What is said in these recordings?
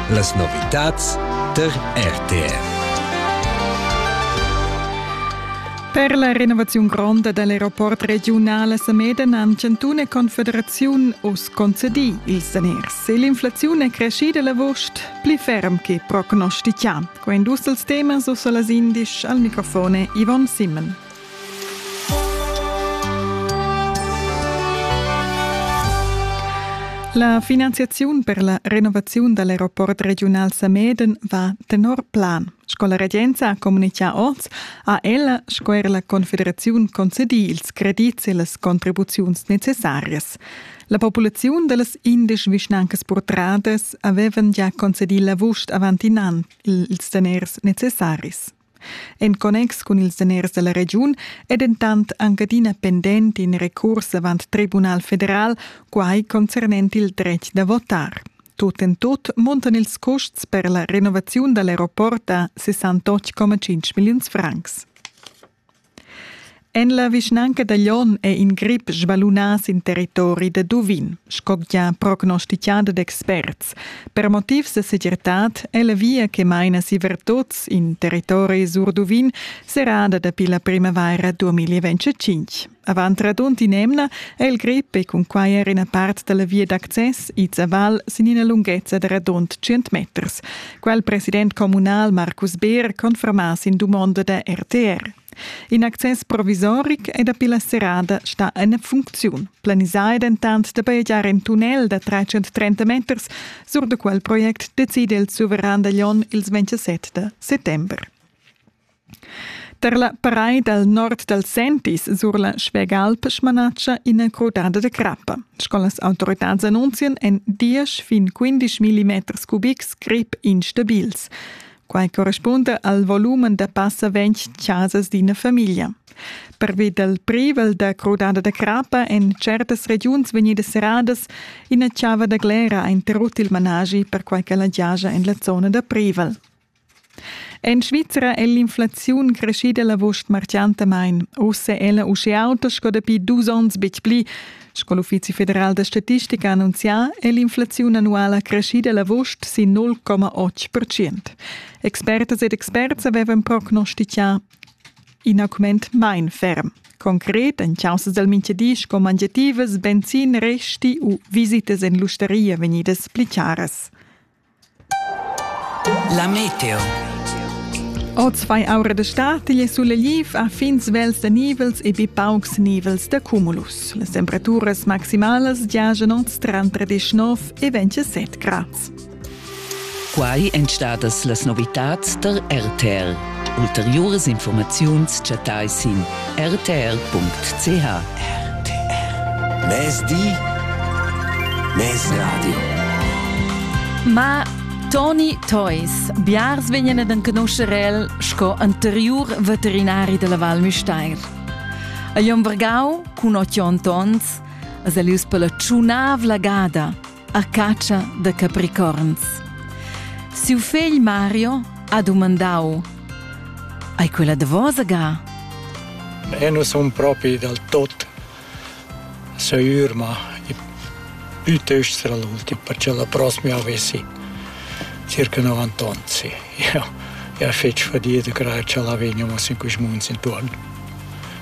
Las novitads per RTR. Per la renovaziun gronda dell'aeroport regiunal a Sameden han Cantun e Confederaziun oz concedì ils daners e l'inflaziun è crescida l'avuost pli ferm che prognostichà. Quai indust els temas uss las indisch al microfone Yvonne Simmen. La finanziaziun per la renovaziun dall'aeroport regiunal Sameden va tenor plan. Sco la regenza ha communichà oz, ha ella sco er la Confederaziun concedì ils credits e las contribuziuns necessarias. La populaziun da las indesch vischnancas purtradas avevan già concedì l'avust avant in an ils daners necessaris. En connex cun ils daners dalla regiun è dentant anc adina pendent in recurs avant Tribunal federal, quai concernent il dretg da votar. Tut en tut muntan ils custs per la renovaziun dall'aeroport a 68,5 milliuns francs. En la vischnanca da Lyon è in grip svalunà sin territori da Duvin, sco gia prognostitgada d'experts. Per motivs da segirtad è la via che maina si ver tuts in territori sur Duvin serrada dapi la primavaira 2025. Avant radund in'emna è il grip e cun quai er ina part da la via d'access ids a val sin ina lunghezza da radund 100 meters. Quel president communal Marcus Beer conferma sin dumonda da RTR. In access provisoric è dapi la serrada sta en funcziun. Planisà è dentant da bajegiar in tunnel da 330 meters. Sur da quel project decide il suveran da Lyon ils 27 da settember. Tar la paraid dal nord dal Sentis sur la Schwegalp smanatscha ina crudada da crappa. Sco las autoritads annunzian, èn diesch fin 15 mm cubics grip instabils. Quai correspunda al volumen da passa ventg chasas d'ina famiglia. Pervi dal privel da crudada da crappa èn certas regiuns vegnidas serradas. Ina chava da glera ha interrut il managi perquai ch'ella giaja en la zona da privel. En Svizra è l'inflaziun creschida l'avust marciantamain. Uss è ella uschè auta sco dapi dus onns betg pli. Sco l'Uffizi federal da statistica ha annunzià, è l'inflaziun annuala creschida l'avust sin 0,8 percent. Expertas ed experts avevan prognostità in augment main ferm. Concret, en causa dal mintgadi sco mangiativas, benzin, resti u visitas en l'ustaria vegnidas pli chiaras. La meteo. Oz fai aura da statigl e suleliv a fin svels da nivels e be paucs nivels da cumulus. Las temperaturas maximalas giajan oz tranter 19 e 27 grads. Quai èn stadas las novitads tar RTL. Ulteriuras infurmaziuns chattai sin rtr.ch. Mezdi Mezradio Ma Toni Theus, biars vegnan ad enconoscer el sco anteriur veterinari della Val Müstair. A Lombargau, cun ochi onns, es el ius per la tschunavla gada – a catscha da capricorns. Siu fegl Mario ha dumandau: Ei quella davosa ga? E nus sun propi dal tot seur, ma piuttosto l'ultimo, perché la prossima avessi circa 90 anni. Sì. Io, io feci fatica che ce la veniamo in questi mesi intorno.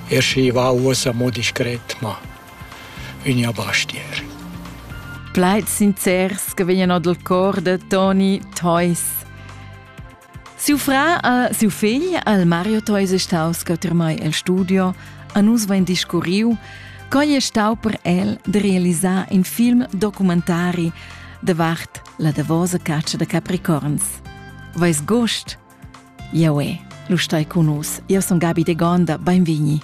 Ersi va usa mo discret, ma Ünja Bastier. Plaids sincers che vegnan dal cor da Toni Theus. Siu fra e siu figl, al Mario Theus, è staus mai el studio, a nus vain discurriu, cogl è stau per el de realisar in film documentari davart la davosa caccia da capricorns. Vais gust? Jau è, lu stai cun us, io son Gabi de Gonda, beinvigni.